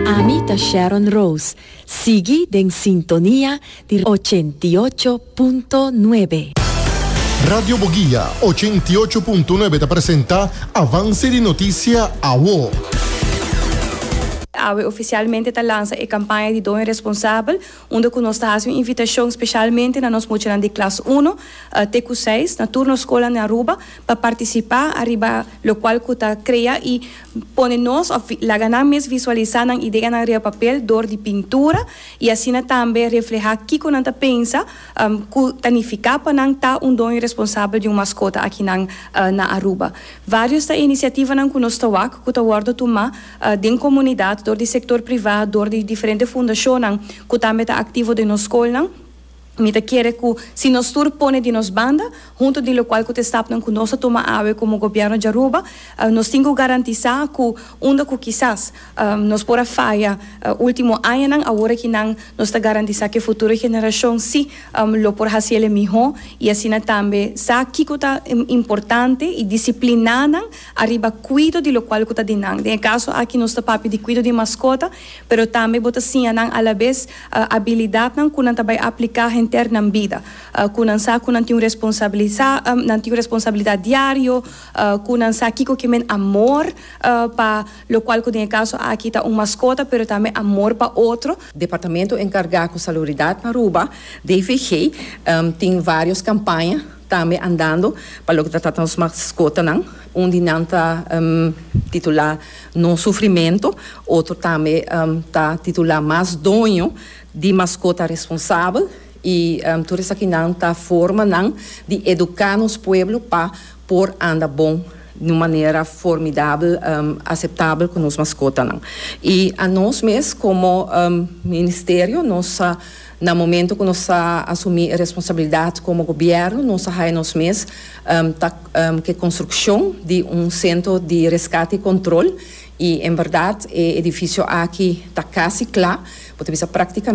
Ami ta Sharon Rose, sigui den sintonia di ochenta i ocho punto nuebe. Radio Boguia ochenta i ocho punto nuebe ta presenta Avance di Noticia Awo. Awe oficialmente ta lansa e campaña di Doña Responsabel, unda cu nos ta haci un invitacion specialmente na nos muchanan di klas uno te cu seis na tur nos scola na Aruba pa participa ariba locual cu ta crea y Pone nos of laga nan mes visualisá nan ideanan riba papel dor di pintura i asina tambe reflehá kiko nan ta pensa ku ta nifiká pa nan ta un doño responsabel di un maskota akinan na Aruba. Vários ta e inisiativanan ku nos ta wak ku ta wòrdu tumá den komunidat dor di sektor privá, dor di diferente fundashonnan ku tambe ta aktivo den nos skolnan. Mi ta kere ku si nos tur pone di nos banda, huntu di lokual ku ta estapnan ku nos ta tuma awe komo gobièrnu di Aruba, nos tin ku garantisá ku unda ku kisas nos por a faya último añanan, awor aki nan nos ta garantisá ku e futuro generashon sí lo por hasi el e mihó i asina tambe sa kiko ta importante i disipliná nan ariba kuido di lokual ku ta di nan. Den e kaso aki nos ta papia di kuido di maskota. Pero tambe bo ta siña nan alabes abilidatnan ku nan ta bai apliká henter nan bida, ku nan sa ku nan tin un responsabilisa, nan tin un responsabilidat diario, ku nan sa kiko ke men amor pa lo kual ku den e kaso aki ta un maskota pero tambe amor pa otro. Departamento enkargá ku Salubridat na Aruba, DVG, tin vários kampaña tambe andando pa loke ta trata nos maskotanan. Un di nan ta titulá No sufrimentu, otro tambe ta titulá mas doño di maskota responsabel i tur esakinan ta forma nan di eduká nos pueblo pa por anda bon di un manera formidabel, aseptabel ku nos maskotanan. I anos mes komo ministerio nos ta. Na momento cu nos a asumi e responsabilidad como gobierno, nos a haya nos mes ta ke construccion di un centro di rescate y control y en berdad e edificio aki ta casi cla', bo ta bisa practicamente.